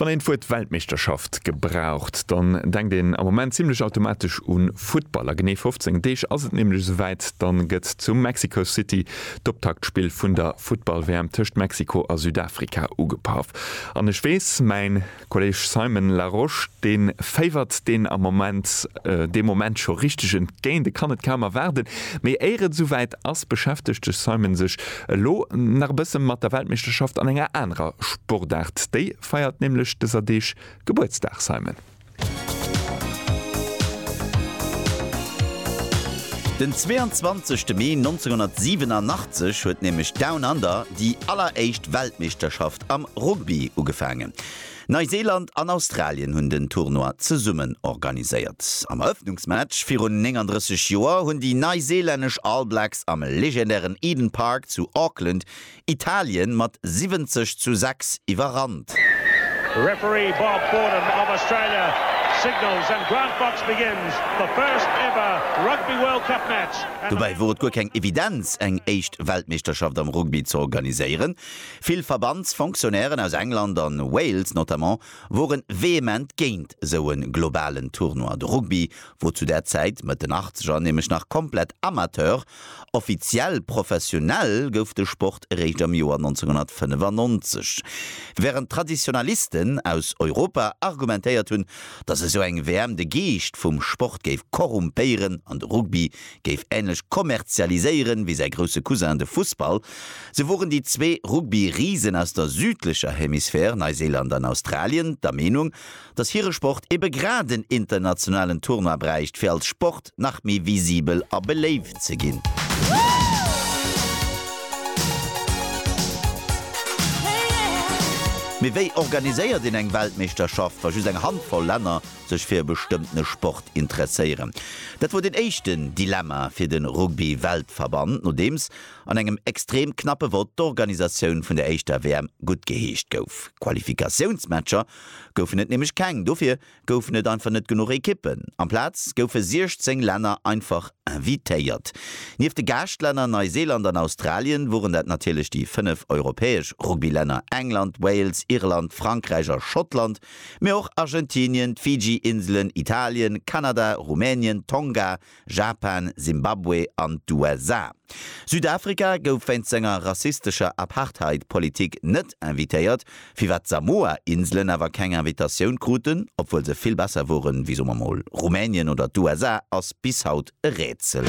Wann een d'Wuert Weltmeeschterschaft gebraucht, dann denkt een am Moment zimlech automatesch un Futtball. A genee 15 Deeg ass et nämlech esouwäit, dann gëtt zu Mexico City d'Optaktspill vun der Futtball-WM tëscht Mexiko a Südafrika ugepaff. An ech weess, mäin. Kolleeg Simon Larosche, dee féiwert deen am Moment, dee Moment scho richteg entgéint, e kann et kaum erwaarden. Mee éier et esouwäit ass, beschäftegt de Simon sech elo nach e bësse mat der Weltmeeschterschaft an enger anerer Sportaart. Déi feiert nämlech dëser Deeg Gebuertsdag, Simon. Den 22 Mee 1987 huet nämlech Down Under déi alleréischt Weltmeeschterschaft Am Rugby ugefaangen. Neiseeland an Australien hunn den Tournoi zesummen organiséiert. Am Erëffnungsmatch virun 39 Joer hunn déi neiseelännesch All Blacks am legendären Eden Park zu Auckland Italien mat 70 zu 6 iwwerrannt. Referee Bob Fordham of Australia signals and Grant Fox begins the first ever Rugby World Cup match. Dobäi wor et guer keng Evidenz eng éischt Weltmeeschterschaft am Rugby ze organiséieren. Vill Verbandsfonctionnairen aus England an Wales notamment woren vehement géint sou en globalen Tournoi. De Rugby wor zu där Zäit, Mëtt den Achtzeger, nämlech nach komplett Amateur. Offiziell professionell gouf de Sport eréischt am Joer 1995, während Traditionalisten aus Europa argumentéiert hunn, dass esou eng WM de Geescht vum Sport géif korrumpéieren an de Rugby géif änlech kommerzialiséieren wéi säi grousse Cousin de Fussball, sou woren déi zwee Rugby-Risen aus der südlecher Hemisphär, Neiséiland an Australien, der Meenung, datt hire Sport ebe grad en internationalen Tournoi bräicht, fir als Sport nach méi visibel a beléift ze ginn. Mee wéi organiséiert een eng Weltmeeschterschaft, wa just eng Handvoll Länner sech fir e bestëmmtene Sport interesséieren. Dat wor den éischten Dilemma fir de Rugby-Weltverband, nodeems an engem extrem knappe Vott d'Organisatioun vun der éischter WM guttgeheescht gouf. Qualifikatiounsmatcher goufen et nämlech keng, dofir goufen et einfach net genuch Ekippen. Amplaz goufe 16 Länner einfach invitéiert. Nieft de Gaaschtlänner Neiseeland an Australien woren dat natierlech déi 5 europäesch Rugby-Länner, England, Wales, Irland, Frankräich a Schottland, Mee och Argentinien, d'Fiji-Inselen, Italien, Kanada, Rumänien, Tonga, Japan, Simbabwe an d'USA. Südafrika gouf wéinst senger rassistescher Apartheid-Politik net invitéiert, firwat d'Samoa-Inselen awer keng Invitatioun kruten, obwuel se vill besser woren wéi, soe mer mol, Rumänien oder d'USA, ass bis haut e Rätsel.